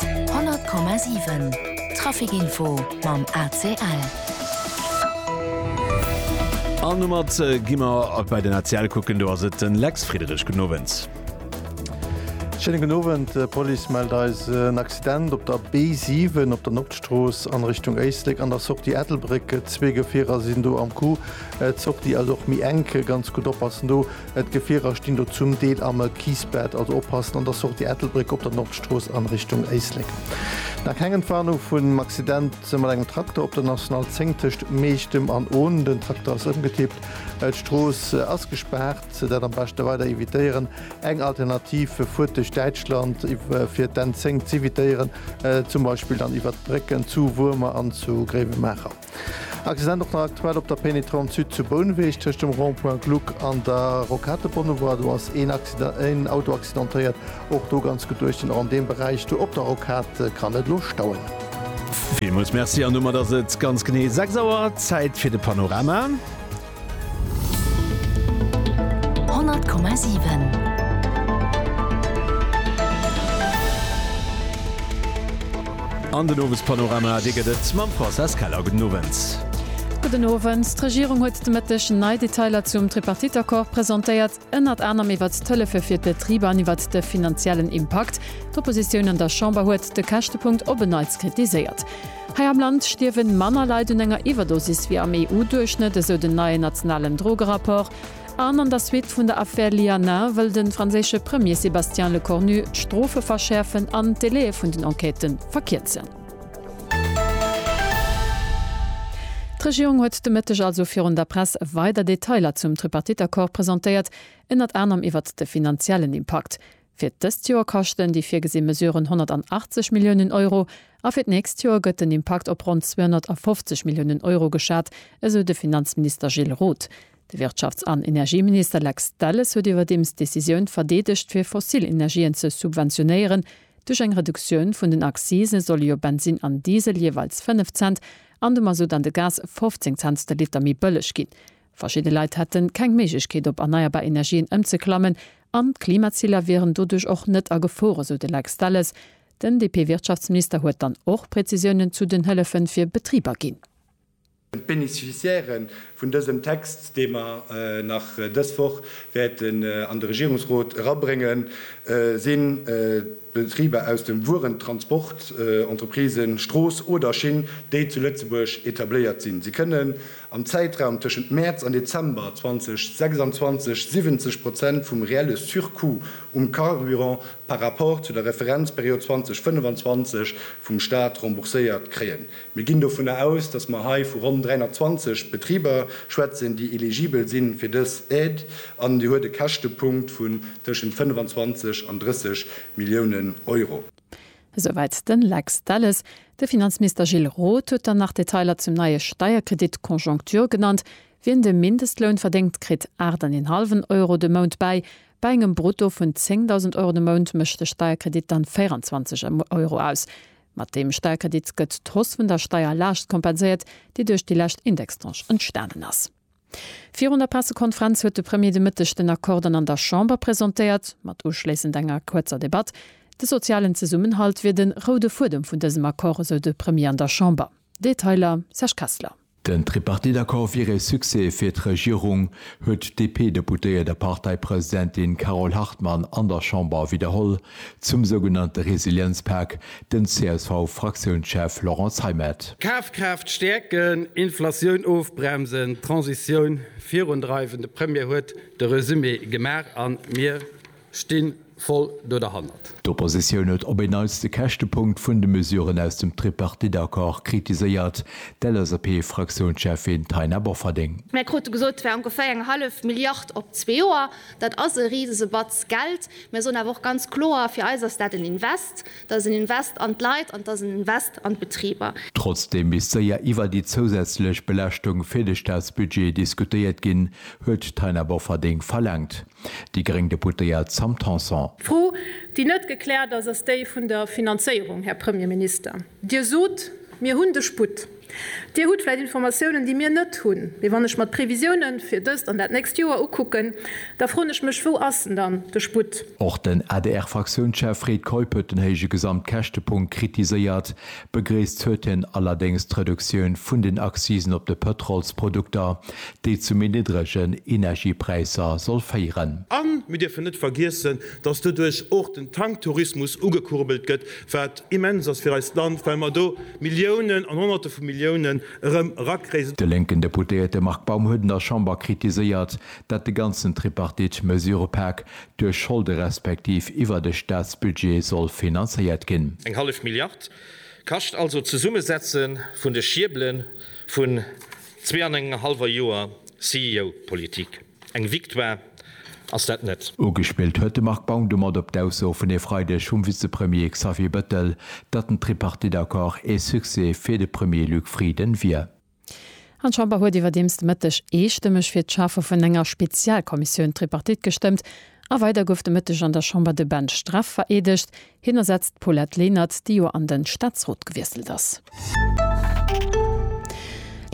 100,7 Traficinfo mam ACL. An domat gi mer ab bei den ACL kucken. Do ass et den Lex Friederich. Guten Owend. Schéine gudden Owend. D'Police mellt eis en Accident op der B7 op der Nordstrooss an Richtung Éislek an der Sortie Ettelbréck. Zwee Gefierer sinn do am Coup. D'Sortie ass och méi enk. Ganz gutt oppassen do. D'Gefierer stinn do zum Deel am Kiesbett, also oppassen an der Sortie Ettelbréck op der Nordstrooss an Richtung Éislek. Nach keng Entwarnung vun Accident mat engem Trakter op der National 10 tëscht Meechtem an Ohn. Den Trakter ass ëmgetippt, d'Strooss ass gespaart. Dat am beschte weider evitéieren. Eng Alternativ, fuert duerch Däitschland fir d'N 10 z'evitéieren, zum Beispill dann iwwert d'Brécken zu Wuermer an zu Gréiwemaacher. Accident och nach aktuell op der Pénétrante Sud zu Bouneweg tëscht dem Rond-point Gluck an der Rocade Bonnevoie. Do ass een Accident, een Auto accidentéiert. Och do ganz gutt duerch den an deem Beräich do op der Rocade kann et elo stauen. Villmools Merci an domat ass et ganz genee 6 Auer. Zäit fir de Panorama. An den Owespanorama, dee gëtt et mam Françoise Keller. Gudden Owend. Gudden Owend. D'Regierung huet de Mëtteg nei Detailer zum Tripartite-Accord presentéiert. ënnert anerem iwwert d'Hëllefe fir d'Betriber an iwwert de finanziellen Impakt. D'Oppositioun an der Chamber huet de Käschtepunkt op en Neits kritiséiert. Hei am Land stierwe manner Leit un enger Iwwerdosis wéi am EU-Duerchschnëtt, esou den neien nationalen Drogerapport. An an der Suite vun der Affär Lianin wëll de franséische Premier Sébastien Lecornu d'Strofe verschäerfen an d'Delaie vun den Enquêtë verkierzen. D'Regierung huet de Mëtteg also virun der Press weider Detailer zum Tripartite-Accord presentéiert, ënnert anerem iwwert de finanziellen Impakt. Fir dëst Joer kaschten déi virgesi Mesuren 180 Milliounen Euro a fir d'nächst Joer gëtt den Impakt op ronn 250 Milliounen Euro geschat, esou de Finanzminister Gilles Roth. De Wirtschafts an Energieminister Lex Delles huet iwwerdeems d'Decisioun verdeedegt fir fossil Energien ze subventionéieren. Duerch eng Reduktioun vun den Accisen solle jo Bensinn an Diesel jeeweils 5 Cent an de Mazout an de Gas 15 Cents de Liter méi bëlleg ginn. Verschidde Leit hätte keng Méiglechkeet op erneierbar Energien ëmzeklammen an d'Klimaziler wieren doduerch och net a Gefor, esou de Lex Delles. Den DP-Wirtschaftsminister huet dann och Prezisiounen zu den Hëllefe fir Betriber ginn. D'Beneficiairë vun dësem Text, dee mer nach dës Woch wäerten an de Regierungsrot erabréngen, si Betriber aus dem Wuerentransport, Entreprisen, Strooss oder Schinn, déi zu Lëtzebuerg etabléiert sinn. Si kënnen am Zäitraum tëschent Mäerz an Dezember 2026 70 Prozent vum reelle Surcoût um Carburant par rapport zu der Referenzperiod 2025 vum Staat rembourséiert kréien. Mir ginn dovunner aus, dass mer hei vu ronn 320 Betriber schwätzen, déi eligibel si fir dës Aide, an déi huet e Käschtepunkt vun tëschent 25 an 30 Milliounen Euro. Esouwäit de Lex Delles. De Finanzminister Gilles Roth huet dann nach Detailer zum neie Steierkredit Conjoncture genannt. Wien de Mindestloun verdéngt, kritt aacht an een hallwen Euro de Mount bäi. Bei engem Brutto vun 10.000 Euro de Mount mécht de Steierkredit dann 24 Euro aus. Mat deem Sperkredit gëtt d'Hausse vun der Steierlaascht kompenséiert, déi duerch déi lescht Indextranche entstanen ass. Virun der Pressekonferenz huet de Premier de Mëtteg den Accord dann an der Chamber presentéiert, mat uschléissend enger kuerzer Debatt. De sozialen Zesummenhalt wier de roude Fuedem vun dësem Accord, esou de Premier an der Chamber. Detailer, Serge Kessler. Den Tripartite-Accord wier ee Succès fir d'Regierung, huet d'DP-Deputéiert a Parteipresidentin Carole Hartmann an der Chamber widderholl. Zum sougenannte Resilienzpak, den CSV-Fraktiounschef Laurent Zeimet. Kafkraaft stäerken, Inflatioun ofbremsen, d'Transitioun virundreiwen, de Premier huet de Resumé gemaach a mir Stinn voll do derhannert. D'Oppositioun huet op een Neits de Käschtepunkt vun de Mesuren aus dem Tripartite-Accord kritiséiert, d'LSAP-Fraktiounscheffin Taina Bofferding. Mir krute gesot, et wär ongeféier eng hallef Milliard op zwee Joer. Dat ass e risese Batz Geld. Mir soen awer och ganz kloer, fir eis ass dat en Invest. Dat ass en Invest an d'Leit an et ass en Invest an d'Betriber. Trotzdeem misst séier iwwer déi zousätzlech Belaaschtung fir de Staatsbudget diskutéiert ginn, huet d'Taina Bofferding verlaangt. Déi gréng Deputéiert Sam Tanson. D'Fro, déi net gekläert ass, ass déi vun der Finanzéierung, Här Premierminister. Dir sot, Mir hunn de Sputt. Dir hutt vläicht Informatiounen, déi mir net hunn. Mee wann ech mer d'Previsioune fir dëst an dat nächst Joer ukucken, da froen ech mech, Wou ass en dann, de Sputt? Och den ADR-Fraktiounschef Fred Keup huet den héije Gesamtkäschtepunkt kritiséiert. Begréisst huet hien allerdéngs d'Reduktioun vun den Accisen op de Pëtrolsprodukter, déi zu méi niddregen Energiepräisser soll féieren. A mir dierfen net vergiessen, dass doduerch och den Tanktourismus ugekurbelt gëtt, wat immens ass fir eist Land, well mer do Milliounen an Honnerte vu Milliounen erëm erakréien. De lénken Deputéierte Marc Baum huet an der Chamber kritiséiert, dat de ganzen Tripartite-Mesurëpak duerch Scholde respektiv iwwer de Staatsbudget soll finanzéiert ginn. Eng hallef Milliard kascht also d'Zesummesetze vun de Schierbele vun zwee an engem hallwer Joer CEO-Politik. Eng Victoire ass dat net. Ugespillt huet de Marc Baum domat op d'Ausso vun e Freideg vum Vizepremier Xavier Bettel, datt den Tripartite-Accord ee Succès fir de Premier Luc Frieden wier. An d'Chamber huet iwwerdeems de Mëtteg eestëmmeg fir d'Schafe vun enger Spezialkommissioun Tripartite gestëmmt. A weider gouf de Mëtteg an der Chamber de Ben Streff vereedegt. Hien ersetzt d'Paulette Lenert, déi jo an de Staatsrot gewiesselt ass.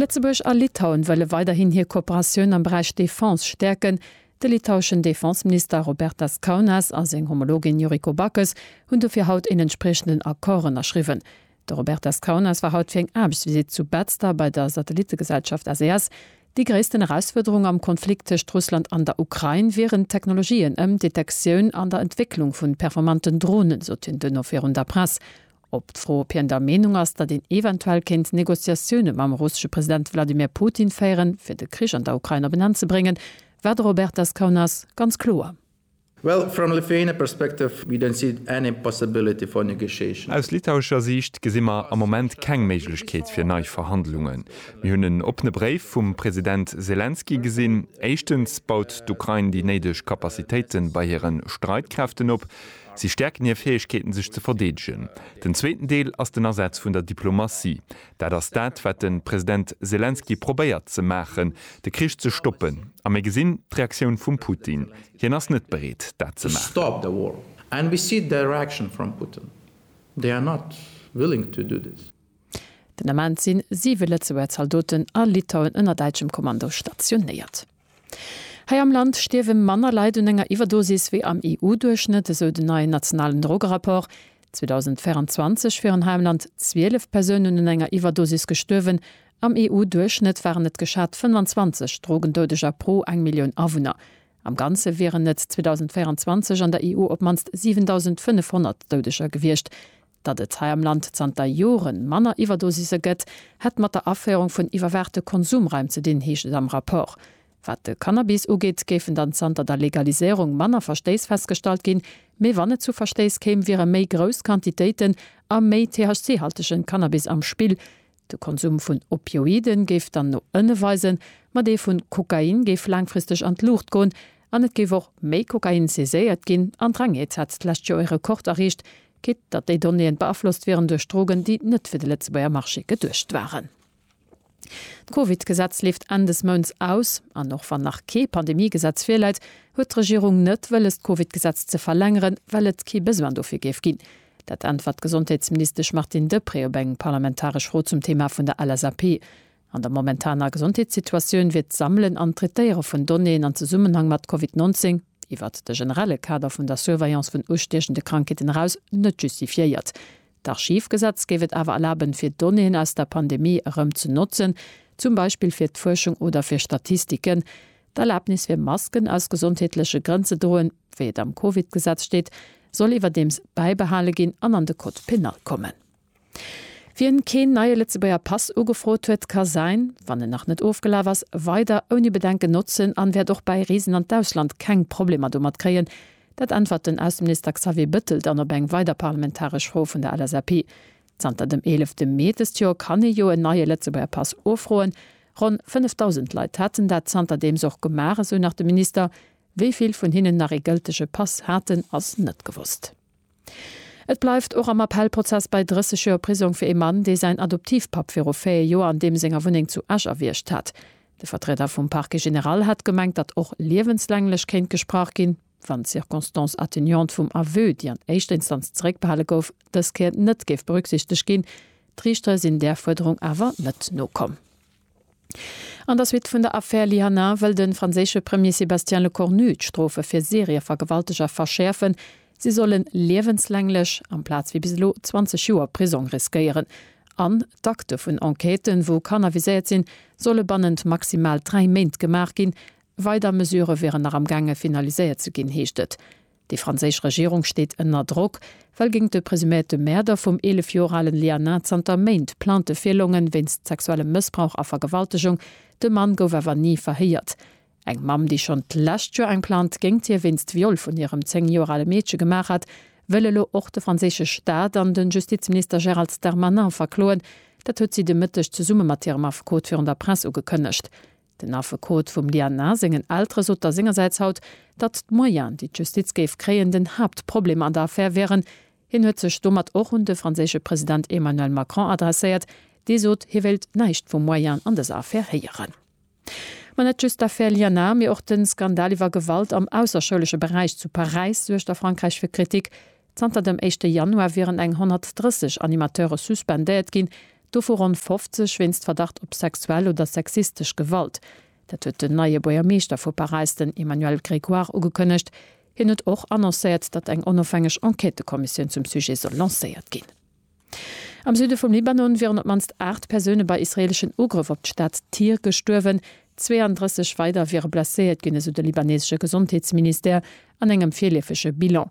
Lëtzebuerg a Litauen wëlle weiderhin hir Kooperatioun am Beräich Defense stäerken. De litaueschen Defenseminister Robertas Kaunas a seng Homologin Yuriko Backes hunn dofir haut een entspriechenden Accord ënnerschriwwen. De Robert Descaunes war haut fir eng Aarbechtsvisitt zu Betzder bei der Satellittegesellschaft SES. Déi gréissten Erausfuerderung am Konflikt tëscht Russland an der Ukrain wieren d'Technologien ëm d'Detektioun an der Entwécklung vun performanten Dronen, sot hien duerno virun der Press. Op d'Fro, ob hien der Meenung ass, datt een eventuell kéint Negociatioune mam russesche President Wladimir Putin féieren, fir de Krich an der Ukrain op en Enn ze bréngen, war de Robert Descaunes ganz kloer. Well from Lithuania perspective we don't see any possibility for negotiation. Aus litauescher Siicht gesi mer am Moment keng Méiglechkeet fir nei Verhandlungen. Mir hunn en oppene Bréif vum President Selenskyj gesinn. Éischtens baut d'Ukrain déi néideg Kapazitéite bei hire Streitkräften op. Si stäerken hir Fäegkeeten, sech ze verdeedegen. Den zweeten Deel ass den Asaz vun der Diplomatie. Dat ass dat, wat de President Selenskyj probéiert ze maachen, de Krich ze stoppen. A mir gesinn d'Reaktioun vum Putin. Hien ass net bereet, dat ze maachen. Den Ament si siwe Lëtzebuerger Zaldoten a Litauen ënner däitschem Kommando stationéiert. Hei am Land stierwe manner Leit un enger Iwwerdosis wéi am EU-Duerchschnëtt, esou den neien nationalen Drogerapport. 2024 wieren hei am Land 12 Persounen un enger Iwwerdosis gestuerwen, Am EU-Duerchschnëtt waren et geschat 25 Drogendoudeger pro eng Millioun Awunner. Am Ganze wieren et 2024 an der EU op d'mannst 7.500 Doudeger gewiescht. Datt et hei am Land zanter Jore manner Iwwerdosise gëtt, hätt mat der Aféierung vun iwwerwaachte Konsumraim ze dinn, heescht et am Rapport. Wat de Cannabis ugeet, géifen dann zanter der Legaliséierung manner Verstéiss festgestallt ginn. Mee wann et zu Verstéiss kéim, wiere méi grouss Quantitéiten a méi THC-haltege Cannabis am Spill. De Konsum vun Opioiden géif dann no ënne weisen, ma dee vu Kokain géif laangfristeg an d'Luucht goen an et géif och méi Kokain saiséiert ginn. An d'Rengheet hat d'lescht Joer e Rekord erreecht, quitt datt déi Donnéeën beaflosst wieren duerch Drogen, déi net fir de Lëtzebuerger Marché geduecht waren. D'Covid-Gesetz leeft Enn des Mounts aus, an och wann nach kee Pandemie-Gesetz virläit, huet d'Regierung net wëlles d'Covid-Gesetz ze verlängeren, well et kee Besoin dofir géif ginn. Dat äntwert d'Gesondheetsministesch Martine Deprez op eng parlamentaresch Fro zum Thema vun der LSAP. An der momentaner Gesondheetssituatioun wier d'Sammelen an d'Traitéiere vun Donnéeën an Zesummenhang mat Covid 19, iwwert de generelle Kader vun der Surveillance vun ustiechende Krankheeten eraus, net justifiéiert. D'Archivgesetz géif et awer erlaben, fir Donnéeën aus der Pandemie erëm ze notzen, zum Beispill fir d'Fuerschung oder fir Statistiken. D'Erlabnis fir Masken aus gesondheetleche Grënn ze droen, wéi et am Covid-Gesetz steet, soll iwwerdeems bäibehale ginn an an de Code pénal kommen. Wien keen neie Lëtzebuerger Pass ugefrot huet, ka säin, wann en nach net ofgelaf ass, weider ouni Bedenken notzen an wäert och bäi Reesen an d'Ausland keng Problemer domat kréien. Dat äntwert den Ausseminister Xavier Bëttel dann op eng weider parlamentaresch Fro vun der LSAP. Zanter dem 11 Mee dëst Joer kann ee jo en neie Lëtzebuerger Pass ufroen. Ronn 5.000 Leit haten dat zanterdeems och gemaach, esou nach de Minister. Wéi vill vun hinnen nach ee gëltege Pass haten, ass net gewosst. Et bleift och am Appellprozess bei 30 Joer Prisong fir ee Mann, dee säin Adoptivpapp viru 4 Joer an deem senger Wunneng zu Esch erwiergt hat. De Vertrieder vum Parquet général hat gemengt, datt och liewenslänglech kéint gesprach ginn, wann d'Circonstance atténuante vum Aveu, déi an éischter Instanz zeréckbehale gouf, dës Kéier net géif berücksichteg ginn. D'Riichtere sinn där Fuerderung awer net nokomm. An der Suite vun der Affär Lyana wëll de franséische Premier Sébastien Lecornu d'Strofe fir Serievergewalteger verschäerfen. Si solle liewenslänglech, amplaz wéi bis elo 20 Joer Prisong riskéieren. An d'Akte vun Enquêten, wou Kanner viséiert sinn, solle bannent maximal dräi Méint gemaach ginn. Weider Mesurë wieren nach am gaange finaliséiert ze ginn, heescht et. Déi franséisch Regierung steet ënner Drock, well géingt de presuméierte Mäerder vum 11 Joer alen Lianin zanter Méint Plainte virlongen, wéinst sexuellem Mëssbrauch a Vergewaltegung. De Mann gouf awer ni verhéiert. Eng Mamm, déi schonn d'lescht Joer eng Plainte géingt hie wéinst Viol vun hirem 10 Joer ale Meedche gemaach hat, wëll elo och de franséische Staat an de Justizminister Gérald Darmanin verkloen. Dat huet si de Mëtteg zesumme mat hirem Affekot virun der Press ugekënnegt. Den Affekot vum Diana sengen Eltere sot da sengersäits haut, datt d'Moyenen, déi d'Justiz géif kréien, den Haaptproblem an der Affär wieren. Hien huet sech domat och un de franséische President Emmanuel Macron adresséiert, dee sot, hie wéilt näischt vu Moyenen an dëser Affär héieren. Ma net just d'Affär Liana, mee och de Skandal iwwer Gewalt am ausserschoulesche Beräich zu Paräis suergt a Frankräich fir Kritik. Zanter dem éischte Januar wieren eng 130 Animateure suspendéiert ginn, Dovu ronn 50 wéinst Verdacht op sexuell oder sexistesch Gewalt. Dat huet den neie Buergermeeschter vu Paräis, den Emmanuel Grégoire, ugekënnegt. Hien huet och annoncéiert, datt eng onofhängeg Enquêtëkommissioun zum Sujet soll lancéiert ginn. Am Süde vum Libanon wieren op d'mannst 8 Persoune bei israeeleschen Ugrëff op d'Stad Tyr gestuerwen. 32 weider wiere blesséiert ginn, esou de libaneesesche Gesondheetsministère an engem virleefege Bilan.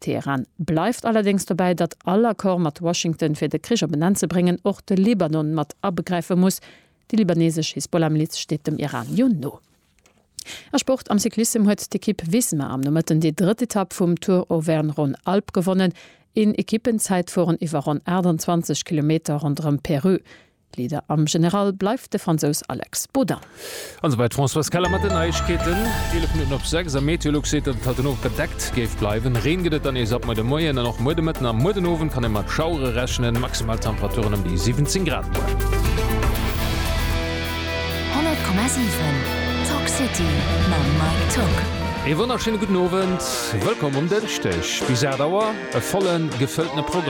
Teheran bleift allerdéngs dobäi, datt all Accord mat Washington, fir de Krich op en Enn ze bréngen, och de Libanon mat abegräife muss. Déi libanesesch Hisbollah-Miliz steet dem Iran jo no. A Sport, Am Cyclissem huet d'Ekipp Visma am Nomëtten déi drëtt Etapp vum Tour Auvergne-Rhône-Alpes gewonnen. Een Ekippenzäitfueren iwwer ronn 28 Kilometer ronderëm Perreux. Leader am General bleift de Fransous Alex Baudin. An esouwäit d'Françoise Keller mat den Neiegkeeten. 11 Minutten op 6 a Meteolux seet, datt et haut den Owend bedeckt géif bleiwen. Reen gëtt et dann nees ab muer de Moien an och muer de Mëtten a muer den Owend kann ee mat Schauere rechnen. Maximal Temperaturen ëm déi 17 Grad muer. 100,7 Talk City mam Mike Tock. Ee wonnerschéine gudden Owend, wëllkomm um Dënschdeg. Bis 8 Auer e vollen, gefëlltene Programm.